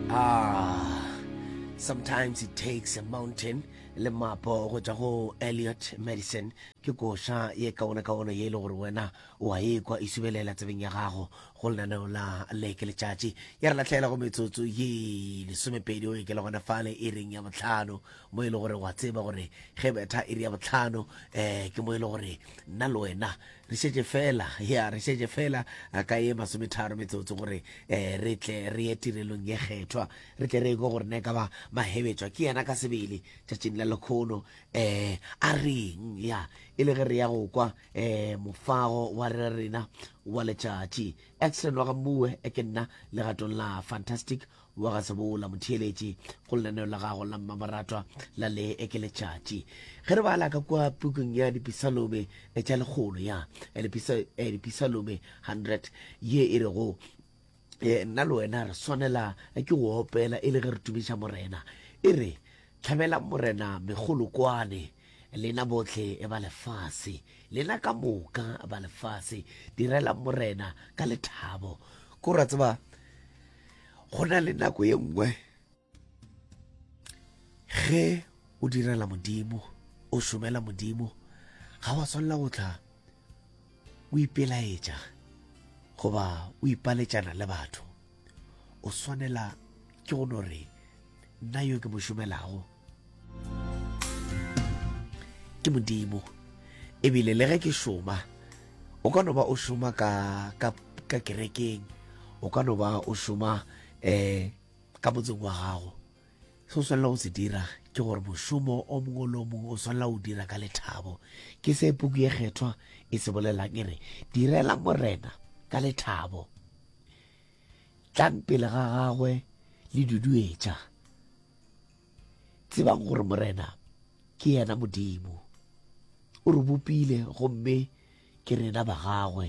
Ah, sometimes it takes a mountain le mapo go tšwa go Elliot Madison ke koša ye kaone kaone ye e le gore wena o a ekwa e subelela tsebeng ya gago go lenaneo la leke letšatši ya re latlhela go metsotso ye lesomepedi o e ke le gona fale e reng ya botlhano mo e le gore wa tseba gore ge betha e re ya botlhano um ke mo e le gore nna le wena Re šetše feela, ya, re šetše feela ka ye masometharo metsotso gore re tle re ye tirelong ye kgethwa, re tle re ekwe gore na e ka ba Mahebetšwa ke yena ka sebele tšatšing la lekgono a reng, ya, e le ge re ya go kwa mofago wa rena wa letšatši. X re no ga mmuwe, ke nna, legatong la fantastic wa ga sebola motheeletši go lenaneo la gago la mmamoratwa la le ekeletšatši ge re bala ka kwa pukung ya dipisalome e tša lekgolo ya eh, eh, dipisalome 100 ye e rego eh, nna le wena re swanela ke go opela e le ge re tumiša morena e re tlhabela morena megolokwane lena botlhe e ba lefase lena ka moka ba lefase direla morena ka lethabo ko ra tseba go na le nako ye nngwe ge o direla modimo o šomela modimo ga wa swanela go tla o ipelaetša goba o ipaletšana le batho o swanela ke go no re nna yo ke mo šomelago ke modimo ebile le ge ke šoma o ka no ba o šoma ka, ka, ka kerekeng o ka no ba o šoma um ka motseng wa gago se o swanela go se dira ke gore mošomo o mongwe le o mongwe o swanela o dira ka lethabo ke se puku ye kgethwa e se bolelang e re direla morena ka lethabo tlang pele ga gagwe le duduetša tsebang gore morena ke yena modimo o re bopile gomme ke rena ba gagwe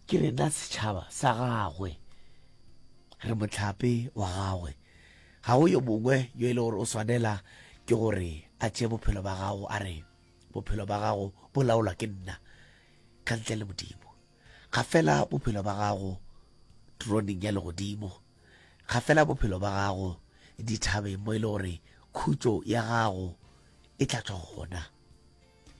ke rena setšhaba sa gagwe re motlhape wa gagwe ga go yo mongwe yo e le gore o swanela ke gore a tše bophelo ba gago a re bophelo ba gago bo laolwa ke nna ka ntle le modimo ga fela bophelo ba gago troneng ya legodimo Ga fela bophelo ba gago dithabeng mo e le gore khutšo ya gago e tla tšwa gona.